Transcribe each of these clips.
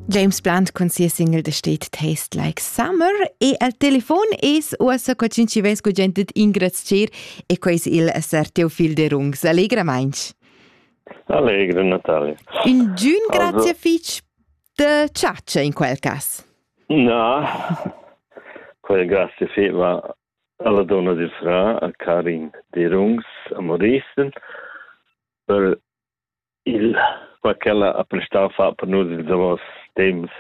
James Blunt cun sia single The State Tastes Like Summer e al telefon es uossa co chin chi vess cu gente d'ingrazchir e quai es il Sir Teofil de Rungs. Allegramainch. Allegro Natale. Un giun grazie also... fich de ciaccia in quel cas. No, quel grazie feva alla donna di fra a Karin de Rungs a Moristen per Il qua ch'ella ha prestau fa per nus ils davos temps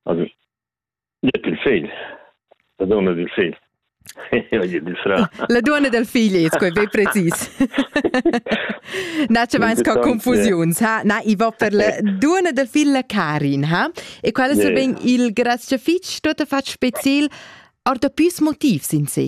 also gliet il fegl, la donna dil fegl. la gliet il fra. La donna dal figl es quei be precis. Na, ce vains ca confusiuns, ha? Na, i va per la donna dal figl la Karin, ha? E qual es yeah. ben il graziafitsch tot ha fatg speciel or da püs motivs in se?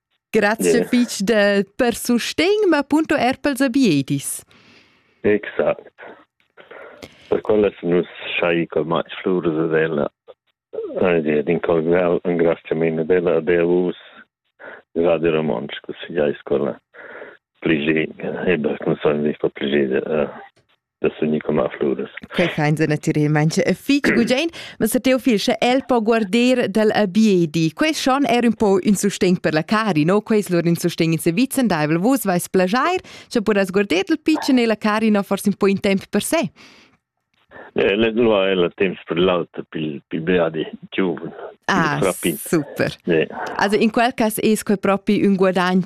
Grazie yeah. fitg de, per sustegn, ma punto er per sabiedis. Exact. Per quella nus schai col mai flurs della d'incolgar un graziamento della Deus Radio Romansch, così ja scola pligé, e beh, non sono dico pligé da sunir com a fluras. Quei fa ins natiralmein e fich gugent, ma se Teofil sche el po guarder dal abiedi. Quei schon er un po un sustegn per la Cari, no? Quei lur un sustegn in servizio, dai vus vais plagiar, sche podas guarder dal piccen e la Cari no forse un po in temp per se. Eh, lo è il tempo per l'altro, per il beati giovane. Ah, super. Yeah. Also in quel caso è quel proprio un guadagno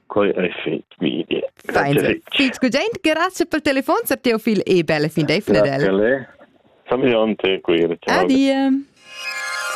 quei ei fit mi idea. Gudent, grazie per telefon, sar Teofil e belle fin dei fnedel. Adieu.